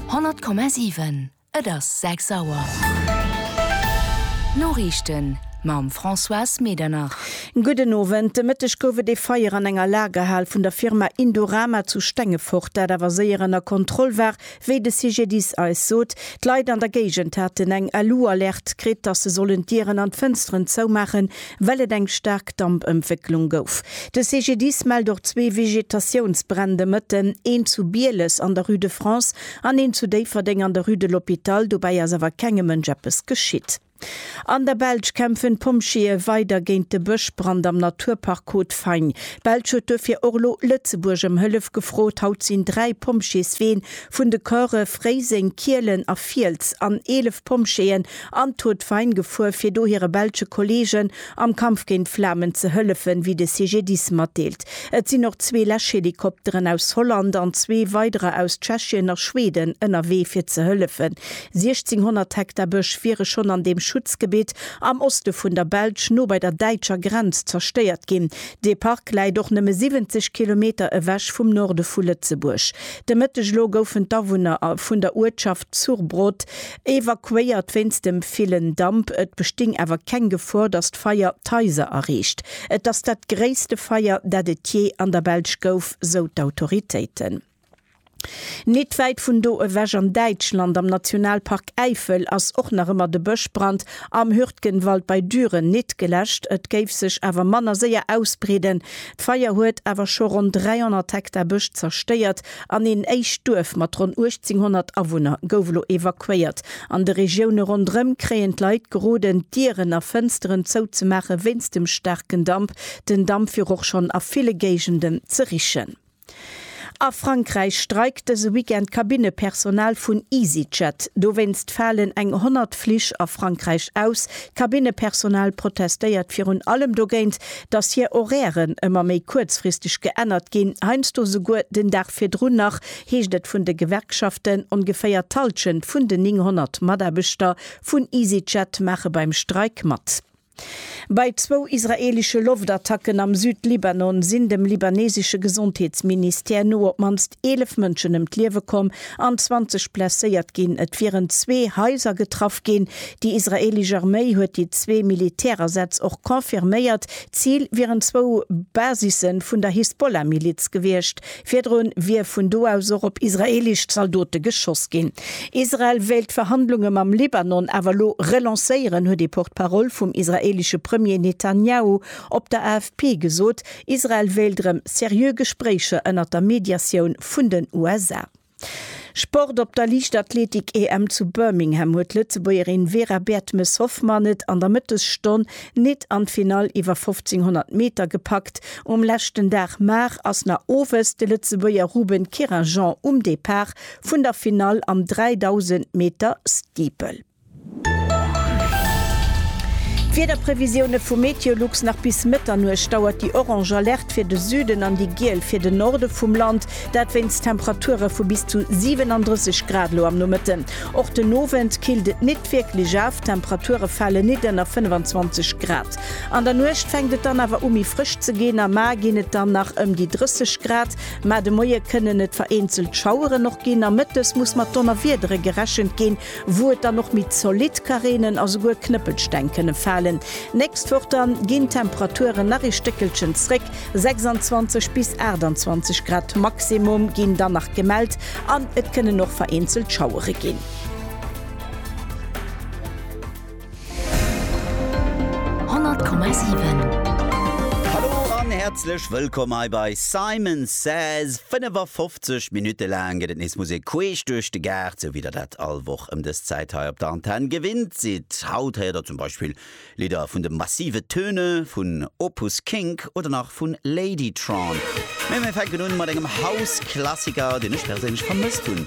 100,7 Et ass 6 Auer. D'Noriichten mam Françoise Medernach. Gudden Owend. De Mëtteg gouf et ee Feier an enger Lagerhal vun der Firma Indorama zu Stengefort, dat awer séier ënner Kontroll war, wéi de CGDIS eis sot. D'Leit an der Géigend haten eng LU-Alerte kritt, dass se sollen d'Dieren an d'Fënsteren zoumaachen. well et eng staark Dampëmwécklung gouf. De CGDIS mellt och zwee Vegetatiounsbränn de Mëtten, een zu Bieles an der Rue de France an een zu Déifferdeng an der Rue de l'Hôpital. Dobäi ass awer kengem Mënsch eppes geschitt. An der Belsch kämpfen d'Pompjeeë weider géint de Bëschbrand am Naturpark Côte-Fagne. D'Belsch huet duerfir och elo Lëtzebuerg ëm Hëllef gefrot. Haut sinn dräi Pompjeesween vun de Corpse Fréiseng, Kielen a Fiels an 11. Pompjeeën an d'Tour de Veine gefuer, fir do hire belsche Kolleegen am Kampf géint d'Flamen ze hëllefen, wéi de CGDIS matdeelt. Et sinn och zwee Läschhelikopteren aus Holland an zwee weiderer aus Tschechien a Schweden ënnerwee fir ze hëllefen. 1.600 Hektar Bësch wiere schonn an deem Schutzgebitt am Oste vun der Belsch, no bei der däitscher Grenz, zerstéiert ginn. Dee Park läit och nëmme 70 Kilometer ewech vum Norde vu Lëtzebuerg. De Mëtteg elo goufen d'Awunner vun der Uertschaft Surbrot evakuéiert wéinst dem villen Damp. Et besting awer keng Gefor, datt d'Feier d'Haiser erreecht. Et ass dat gréisste Feier, dat et jee an der Belsch gouf, sou d'Autoritéiten. Nit wäit vun do ewech an Däitschland, am Nationalpark Äifel, ass och nach ëmmer de Bëschbrand am Hürtgenwald bei Düren nit geläscht. Et géif sech awer manner séier ausbreeden, D'Feier huet awer scho ronn 300 Hektar Bësch zerstéiert an een éischt Duerf mat ronn 1.800 Awunner gouf elo evakuéiert. An de Regioune ronderëm kréien d'Leit geroden, d'Dieren a Fënsteren zouzemaache wéinst dem staarken Damp. Den Damp wier och schonn a ville Géigenden ze richen. A Frankräich streikt dëse Weekend d'Kabinnepersonal vun Easyjet. Dowéinst falen eng 100 Flich a Frankräich aus. D'Kabinnepersonal protestéiert virun allem dogéint, datt hir Horairen ëmmer méi kuerzfristeg geännert ginn, heiansdo esouguer den Dag virdrun nach, heescht et vun de Gewerkschaften. Ongeféier d'Hallschent vun den 900 Mataarbechter vun Easyjet maache beim Streik mat. Bei zwou israeelesche Loftattacken am Südlibanon sinn dem libanesesche Gesondheetsministère no op d'mannst 11 Mënschen ëm d'Liewe komm an 20 blesséiert ginn. Et wieren zwee Haiser getraff ginn. Déi israeelesch Arméi huet déi zwee Militärasaz och confirméiert. D'Zil wieren zwou Basisse vun der Hisbollah-Miliz gewiescht. Virdrun wier vun do aus och op israeelesch Zaldote geschoss ginn. Israel wéilt d'Verhandlunge mam Libanon awer elo relancéieren, huet ee Porte-parole vum israeelesche Premier Netanjahu op der AFP gesot. Israel wéilt erëm seriö Gespréicher ënnert der Mediatioun vun den USA. Sport, Op der Liichtathletik-EM zu Birmingham huet d'Lëtzebuergerin Vera Bertmes-Hoffmann et an der Mëttesstonn nit an d'Finall iwwer 1500 Meter gepackt. Um leschten Dag Mar ass na owes de Lëtzebuerger Ruben Kirrhejean um Depart vun der Finall am 3000 Meter Steeple. D'Wiederprevisioune vu Meteolux, Nach bis Mëtternuecht dauert déi orange Alerte fir de Süden an déi giel fir den Norde vum Land, dat wéinst Temperature vu bis zu 37 Grad elo am Nomëtten. Och den Owend killt et nit wierklech af, d'Temperature fale nit ënner 25 Grad. An der Nuecht fänkt et dann awer u méi frësch ze ginn, am A ginn et dann nach ëm déi 30 Grad, mä de Moie kënnen et vereenzelt Schaueren och ginn a mëttes muss mat Donnerwiedere gerechent ginn. wou et dann och méi zolidd ka reenen a souguer Knëppelsteng kënne falen. D'nächst Woch da ginn d'Temperaturen nach ee Stéckelchen zréck, 26 bis 28 Grad Maximum ginn dann nach gemellt an et kënnen och vereenzelt Schauere ginn. Hallo an häerzlech wëllkomm hei bei Simon Says. 55 Minutte laang gëtt et nees Musek queesch duerch de Gaart, sou wéi der dat all Woch ëm dës Zäit hei op der Antenn gewinnt sidd. Haut héiert der zum Beispill Lidder vun de Massive Töne, vun Opus Kink oder nach vu Ladytron. Mee mir fänken un mat engem House-Klassiker, deen ech perséinlech vermësst hunn.